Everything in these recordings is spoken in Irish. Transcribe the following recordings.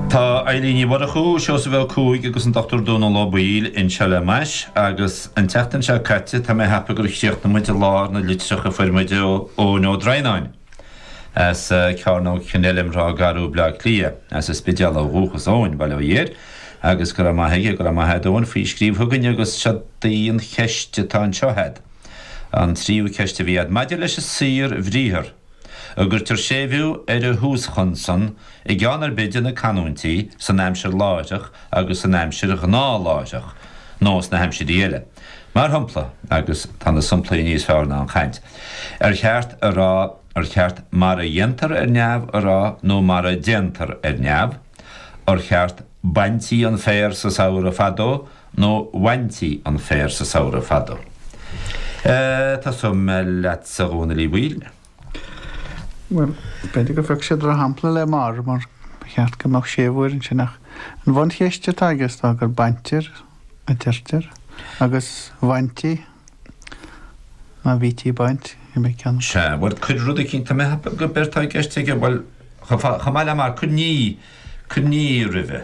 Tá Eilín Ní Mhurchú, Seosamh Ó Cuaig agus an Dr Dónal Ó Baoill anseo le m'ais agus an tseachtain seo caite tá mé ag ceapadh gur chríochnaigh muid i lár na litreach a fuair muid ó Eoin Ó Droighneáin as Cearnóg Kenilworth, Ráth Garbh, Bleá Cliath, as an Spidéal ó dhúchas Eoin, bail ó Dhia air agus go raibh maith aige, go raibh maith a'd Eoin faoi scríobh chugainn agus seod í an cheist atá anseo a'd, an tríú ceist a bhí a'd, maidir leis an saorbhriathar. an gcuirtear séimhiú ar an thúschonsan i gceann ar bith de na canúintí san aimsir láithreach agus san aimsir ghnáthláithreach, nó sna haimsirí eile, mar shompla, agus tá na somplaí níos fearr ná an chaint, ar cheart a rá, ar cheart mar a dhéantar ar neamh a rá nó mar a déantar ar neamh, ar cheart baintí an féar sa samhradh fadó, nó bhaintí an féar sa samhradh fadó. Tosóidh mé leatsa, a Dhónaill Uí Bhaoill. Bhuel, b'fhéidir gur phioc sé drochshampla le 'mar' mar ba cheart go mbeadh séimhiú air ansin ach an bhuncheist atá aige is dóigh gur 'baintear' a deirtear agus 'bhaintí' nó 'bhítí ag baint', an mbeidh ceann acu? Sea, bhuel, cuir rud eicínt, tá mé ag ceapadh gurb éard atá i gceist aige, bhuel, chomh maith le 'mar', cuir 'ní', cuir 'ní' roimhe.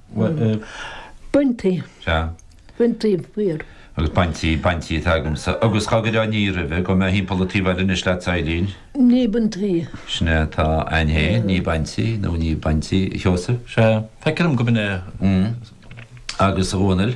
Baintí. Sea. Baintí féar. Agus baintí, baintí atá agamsa. Agus dhá gcuirfeá ní roimhe, gabhfaidh mé thimpeall an taobh eile anois leat a Eilín. Ní baintí. Sin é atá ann é, ní baintí nó ní bhaintí, a Sheosaimh. Sea. Feicim go mbeinn. Agus a Dhónaill.